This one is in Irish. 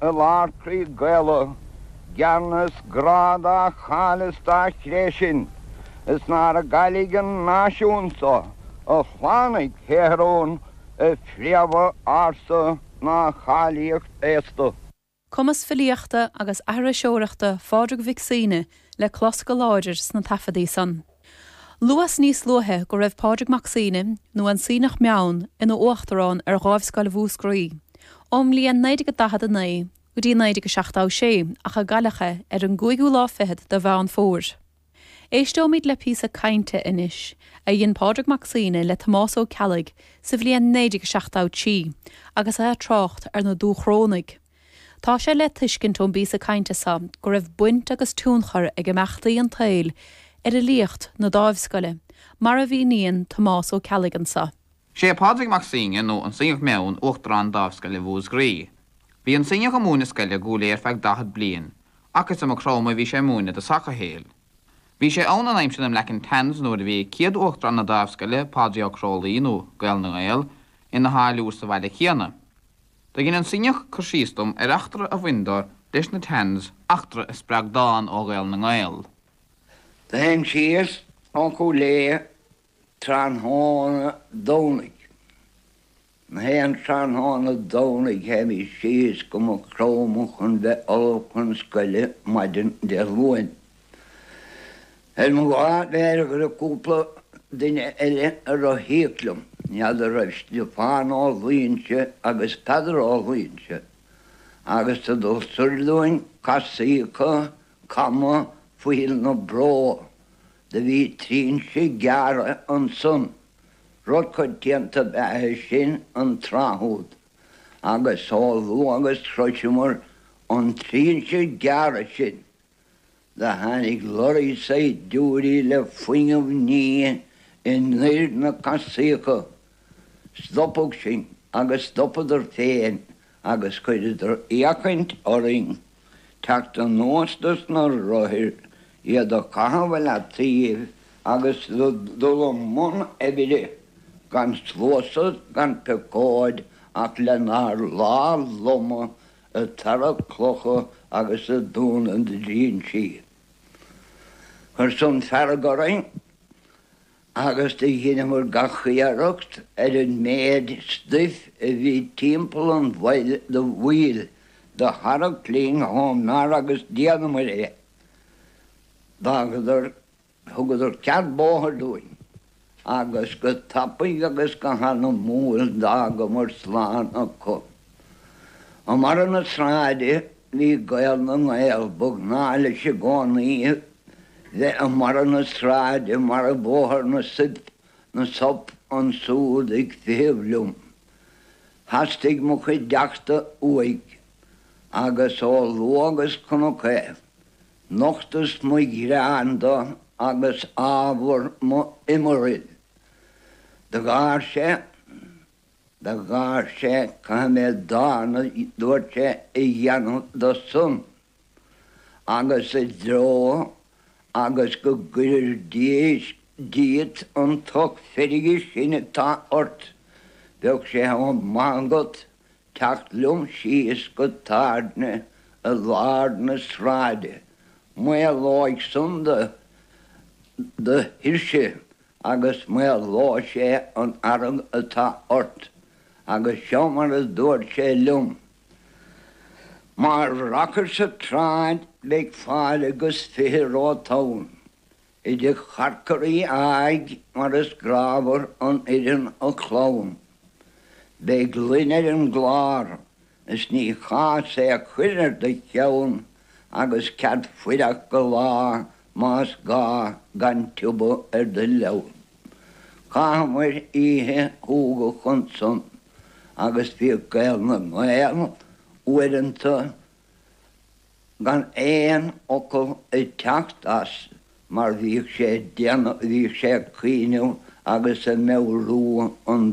I lár croí Gaelach, geanas grá dá cháil is dá chré sin, is nár gcaillidh an náisiún so a shlánaigh Céarón, a phréamha ársa ná a cháilíocht aosta. Cumas filíochta agus aithriseoireachta Phádraig Mhic Suibhne le clos go láidir sna taifeadaí san. Luas níos luaithe go raibh Pádraig Mac Suibhne, nó an Suibhneach Meann, ina uachtarán ar Dháimhscoil Mhúscraí, ón mbliain 1949 go dtí 1976, ach cailleadh é ar an gcúigiú lá fichead de Mheán Fómhair. Éisteoimid le píosa cainte anois a dhein Pádraig Mac Suibhne le Tomás Ó Ceallaigh sa bhliain 1973 agus é ag trácht ar na Dúchrónaigh, Tá sé le tuiscint ón bpíosa cainte seo go raibh baint agus tionchar ag imeachtaí an tsaoil ar fhilíocht na Dáimhscoile, mar a mhíníonn Tomás Ó Ceallaigh anseo. Sé Pádraig Mac Suibhne, nó an Suibhneach Meann, uachtarán Dáimhscoile Mhúscraí. Bhí an Suibhneach ag múineadh scoile i gCúil Aodha ar feadh daichead bliain, ach is i Maigh Chromtha a bhí sé ag múineadh i dtosach a shaoil. Bhí sé ann in aimsir na mBlack and Tans nuair a bhí céad uachtarán na Dáimhscoile, Pádraig Ó Crualaoich, nó Gael na nGael, ina tháilliúr sa bhaile céanna. Tugann an Suibhneach cur síos dom ar eachtra a bhain dó leis na Tans, eachtra a spreag dán ó Ghael na nGael. Théinn síos ó Chúil Aodha tráthnóna Domhnaigh, gach aon tráthnóna Domhnaigh théimís síos go Maigh Chromtha chun bheith ullamh chun scoile maidin Dé Luain. Ar mo lá mheára go raibh cúpla duine eile ag rothaíocht liom, n'fheadar raibh Stiofán Ó Loingsigh agus Peadar Ó Loingsigh agus sa dul soir dúinn casaíocha cama Phoill na Bró, do bhí trinse gearrtha ansan, rud coitianta ab ea é sin an tráth úd, agus chomh luath agus shroiseamar an trinse gearrtha sin, Do tháinig leoraí saighdiúirí le fuinneamh nimhe anoir na casaíocha. Stopadh sinn agus stopadar féin agus chuireadar fhéachaint orainn teacht anuas do sna rothair, iad a chaitheamh i leataoibh agus do dhul i mbun oibre gan sluasad gan piocóid ach lenár lámha loma ag tarrac clocha agus ag dúnadh an trinse. Chuir san fearg orainn agus do dheineamar gach iarracht ar an méid stuif a bhí timpeall an bhaill do bhaoil do tharrac linn chomh mear agus d'fhéadamar é. D'fhágadar Thugadar cead bóthair dúinn, agus go tapaidh agus go hanamúil d'fhágamar slán acu. I mbarra na sráide bhí Gael na nGael, ba ghnáth leis i gcónaí bheith i mbarra na sráide mar i Bóthar na Suip, na Sop, ansúd ag feitheamh liom. Theastaigh mo chuideachta uaidh, agus chomh luath agus chonac é, Nochtas mo ghearán dó agus ábhar mo iomraill. Do gháir sé, do gháir sé, caithfidh mé dán a dúirt sé a dhéanamh dó san agus i dtreo agus go gcuirfir díot an tocht feirge sin atá ort, bheadh sé chomh maith agat teacht liom síos go tábhairne i lár na sráide, maolóidh san do do thuirse agus maolóidh sé an fhearg atá ort. Agus seo mar a dúirt sé liom. Má rachair sa tsráid beidh fáilte agus fiche romhat ann. Idir charcairí a aghaidh mar is grámhar an fhoireann a chlann. Beidh gloine ar an gclár is ní cás é a chur ar do cheann agus cead fuireach go lá más gá gan tiubhadh ar do leann. Chaitheamair oíche shúgach ansan agus bhíodh Gael na nGael uaireanta, gan aon fhocal ag teacht as mar bhíodh sé ag déanamh, bhíodh sé ag cuimhneamh agus ag meabhrú an.